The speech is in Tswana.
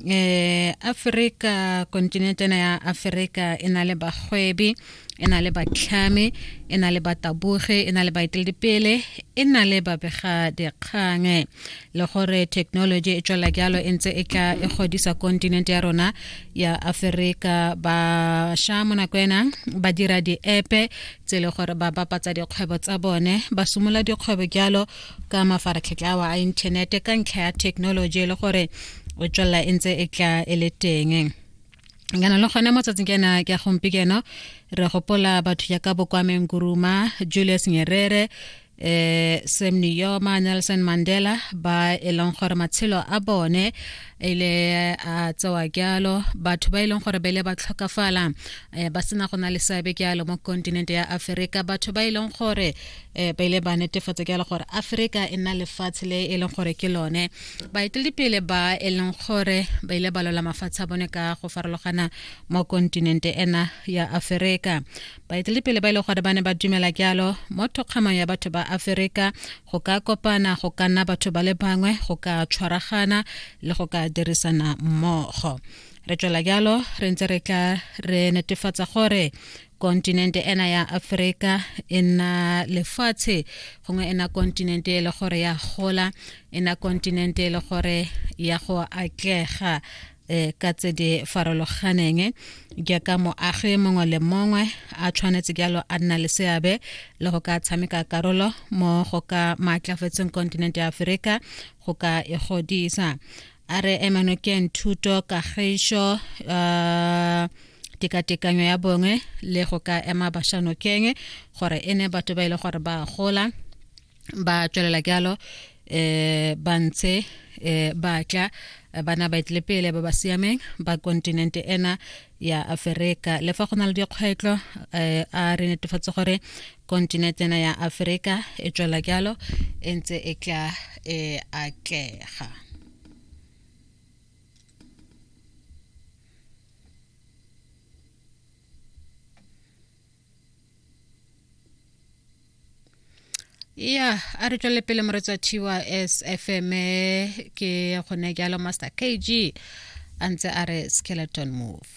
eh Africa continent ena ya Africa e na le bagwebi e na le batlhame e na le bataboge e na le baeteledipele e na le babega dikgang le gore technology e tswela jalo e ntse e tla e godisa continent ya rona ya Africa ba sha mo nako ena ba dira di-epe tse le gore ba bapatsa dikgwebo tsa bone ba simola dikgwebo jalo ka mafaratlhatlha awa a inthanete ka ntlha ya technology e le gore o tswelela e ntse e tla e le teng kana le gone mo tsatsing kena ke ya gompieno re gopola batho ya ka bokwameng kuruma julius nyerere eh Sam Nujoma Nelson Mandela ba e leng gore matshelo a bone ile a tsewa kyalo batho ba e leng gore ba ile ba tlhokafala eh, ba sena go na le seabe kyalo mo kontinente ya Aferika batho ba e leng gore eh, ba ile ba netefatsa ke gore aforika e nna lefatshe le e leng gore ke lone baeteledipele ba e leng gore ba ile ba lola mafatshe a bone ka go farologana mo kontinente ena ya aforika baeteledipele ba e leng gore ba ne ba dumela jalo mo thokgamang ya batho ba aforika go ka kopana go ka nna batho ba le bangwe go ka tshwaragana le go ka dirisana mmogo re tswela jalo re ntse re tla re netefatsa gore kontinente ena ya aforika e nna lefatshe gongwe e na kontinente e le gore ya gola e na kontinente e le gore ya go atlega um ka tse di farologaneng jaaka moagi mongwe le mongwe a tshwanetse jalo a nna le seabe le go ka tshameka karolo mo go ka maatlafetseng kontinente ya aforika go ka e godisa a re emanokeng thuto kagišo uh, tekatekanyo ya bongwe le go ka ema bašanokeng gore e ne batho ba ile e gore ba gola ba tswelela jalo eh ba ntse eh ba tla bana ba etle pele ba ba siameng ba kontinente ena ya aferika le fa go na le dikgwetlho eh, a re netefatse gore kontinente ena ya aferika e tswela jalo e ntse e tla e atlega ya a re tswelele pele moretswa thiwa sfm ke gone jalo master kg a ntse a re skeleton move